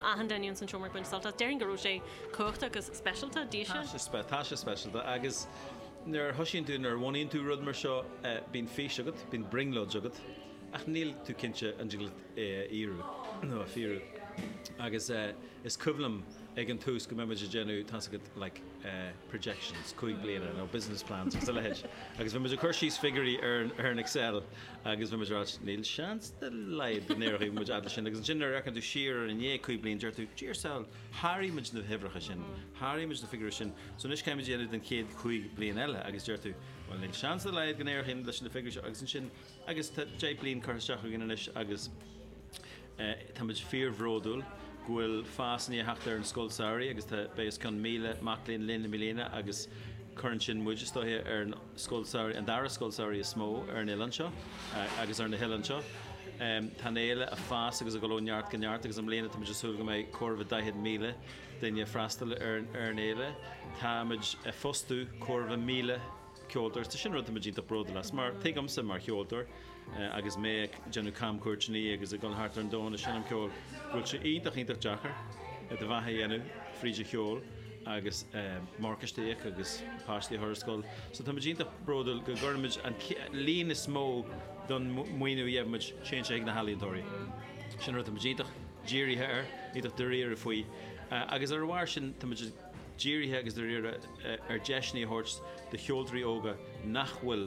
achan duine ins an seomra ag baint sult as. Déarfainn go raibh sé cumhachtach agus speisialta. Bhí sé. Tá sé speisialta agus nuair a thoisíonn tú, nuair a bhunaíonn tú rud mar seo, bíonn fís agat, bíonn brionglóid agat ach níl tú cinnte an dtig leat é a fhíorú. Agus is cuimhin liom ag an tús go mbíodh muid ag déanamh, tá's agat, like, projections, cúig bliana, nó business plans agus a leithéid agus bhí muid ag cur síos figiúirí ar an Excel agus bhí muid ag rá níl seans de laghad go n-éireoidh muid fhad leis sin agus ansin nuair a fhéachann tú siar air i ndiaidh cúig bliana deir tú a shaoil sháraigh muid na huimhreacha sin, sháraigh muid na figiúirí sin so anois caithfidh muid a dhéanamh don chéad chúig bliana eile agus deir tú bhuel níl seans de laghad go n-éireoidh muid leis na figiúirí seo agus ansin agus tá deich bliain curtha isteach againn anois agus táimid fíorbhródúil go bhfuil fás i ndiaidh teacht ar an Scoil Samhraidh agus tá beidh os cionn 1,000 mac léinn linn i mbliana agus cuireann sin muid, is dóiche, ar an Scoil Samhraidh, an dara Scoil Samhraidh is mó ar an oileán seo agus ar na hoileáin seo. Tá an fhéile ag fás agus ag dul ó neart go neart agus i mbliana táimid ag súil go mbeidh corradh le 40,000 duine ag freastal ar an fhéile. Táimid ag fostú corradh le 1,000. ceoltóir, sin rud atá muid iontach bródúil as mar tuigimse mar cheoltóir agus mé ag déanamh camchuairteanna agus ag dul thart ar an domhan ag seinm ceoil go bhfuil sé iontach iontach deacair do bheatha a dhéanamh fríd an cheol agus morgáiste a íoc agus páistí a chur ar scoil so tá muid iontach bródúil go gcuireann muid an líon is mó den mhaoiniú a gheibh muid téann sé chuig na healaíontóirí sin rud atá muid iontach dírithe air iontach dairíre faoi agus ar a bharr sin tá muid ag dírithe agus dáiríre ar deiseanna a thabhairt do cheoltóirí óga nach bhfuil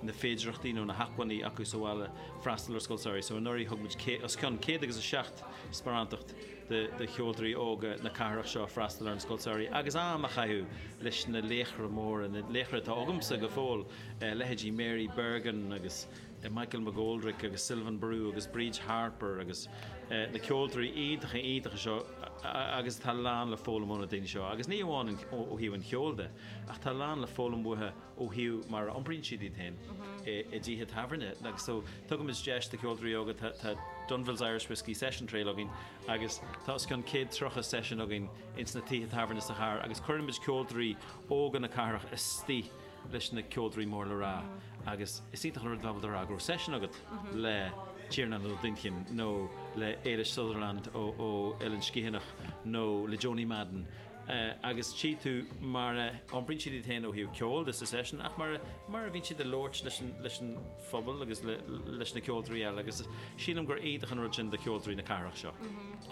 na féidearthachtaí nó na hacmhainní acu sa bhaile freastal ar scoil samhraidh. So anuraidh thug muid os cionn céad agus a seacht sparántacht do cheoltóirí óga na cathrach seo freastal ar an scoil samhraidh agus am a chaitheamh leis na laochra móra, na laochra atá agamsa go fóill, leithéidí Mary Bergin agus. Michael McGoldrick agus Sylvain Barou agus Bríd Harper agus na ceoltóirí iontacha iontacha seo agus tá a lán le foghlaim ó na daoine seo agus ní amháin ó thaobh an cheoil de ach tá a lán le foghlaim uathu ó thaobh mar a iompraíonn siad iad féin i dtithe tábhairne agus so tugann muid deis do cheoltóirí óga tá Dunville's Irish Whiskey Session Trail againn agus tá os cionn 130 seisiún againn ins na tithe tábhairne sa chathair agus cuireann muid ceoltóirí óga na cathrach istigh leis na ceoltóirí mór le rá agus is iontach an rud dá bhfuil do fhreagra ó seisean agat le Tiarnán Ó Duinnchinn nó le Ailis Sutherland ó Eilean Sgitheanach nó le Joanie Madden agus tchí tú mar a iompraíonn siad iad féin ó thaobh ceoil de sa seisean ach mar mar a bhíonn siad a labhairt leis an phobal agus leis na ceoltóirí eile agus sílim gur iontach an rud sin do cheoltóirí na cathrach seo.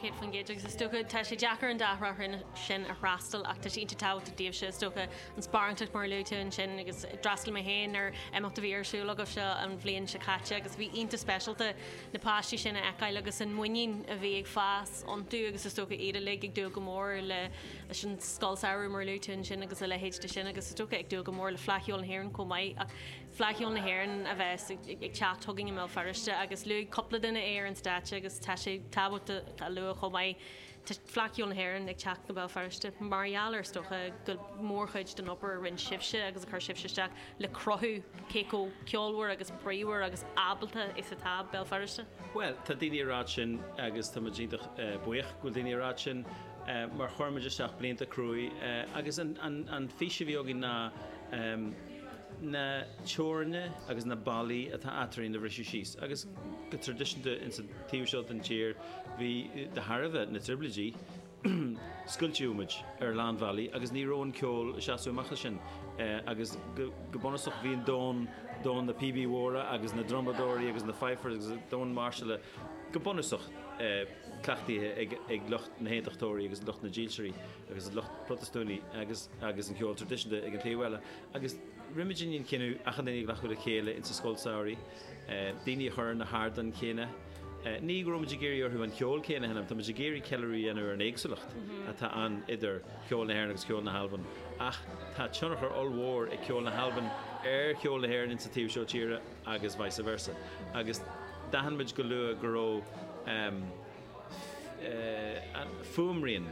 100% agus is dócha tá sé deacair an dá thrá sin a fhreastal ach tá sé iontach tábhachtach daoibhse is dócha an sparántacht mar a luaitear ansin agus d'fhreastail mé féin ar imeacht a bhí ar siúl agaibhse an bhliain seo caite agus bhí iontach speisialta na páistí sin a fheiceáil agus an mhuinín a bhí ag fás iontu agus is dócha iad uilig ag dúil go mór le leis an scoil samhraidh mar a luaitear ansin agus a leithéid de sin agus is dócha ag dúil go mór le Fleadh Cheoil na hÉireann chomh maith ach Fleadh Cheoil na hÉireann a bheas ag teacht chugainn i mBéal Feirste agus luaigh cúpla duine é ar an stáitse agus tá sé tábhachtach a lua chomh maith Tá Fleadh Cheoil na hÉireann ag teacht go Béal Feirste mar gheall ar is dócha go mórchuid den obair a rinne sibhse agus a chuir sibhse isteach le cruthú cé chomh ceolmhar agus bríomhar agus ábalta is atá Béal Feirste. Bhuel, tá daoine ag rá sin agus tá muid iontach buíoch go bhfuil daoine ag rá sin mar chuir muid isteach blianta crua agus an fís a bhí againn ná na teorainneacha agus na ballaí atá eadrainn a bhriseadh síos agus go traidisiúnta ins an Taobh seo den tír, bhí, de thairbhe na dtrioblóidí, scoilteadh muid ar a lán bhealaí agus ní raibh an ceol ag seasamh amach as sin agus go bunúsach bhí an domhan, domhan na bpíobaí móra agus na ndrumadóirí agus na fifers agus domhan máirseála go bunúsach cleachtaithe ag lucht na nAontachtóirí agus lucht na nDílseoirí agus an lucht Protastúnaí agus agus an ceol traidisiúnta ag an taobh eile agus rinne muid an cinneadh achan duine a ghlacadh le chéile insa Scoil Samhraidh daoine a chur ar na hardáin chéanna. Ní go raibh muid ag iarraidh orthu an ceol céanna a sheinm, tá muid ag iarraidh ceiliúradh a dhéanamh ar an éagsúlacht atá ann idir cheol na hÉireann agus cheol na hAlban ach tá tionchar ollmhór ag ceol na hAlban ar cheol na hÉireann insa taobh seo tíre agus vice versa agus d'aithin muid go luath go raibh fuaimrian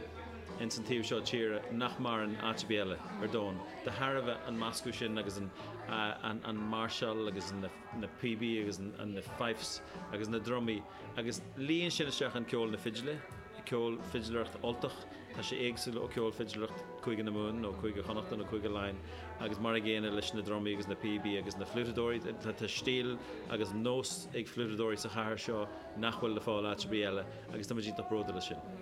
ins an taobh seo tíre nach maireann áit ar bith eile ar domhan de thairbhe an meascadh sin agus an máirseáil agus na píobaí agus na fifes agus na drumaí agus líon sin isteach an ceol na fidle, ceol fidléireacht Ultach. Tá sé éagsúil ó cheol fidléireacht Chúige na Mumhan nó Chúige Chonnachta nó Chúige Laighean agus mar an gcéanna leis na drumaí agus na píobaí agus na fliúiteadóirí. Tá stíl agus nós ag fliúiteadóirí sa chathair seo nach bhfuil le fáil áit ar bith eile agus tá muid iontach bródúil as sin.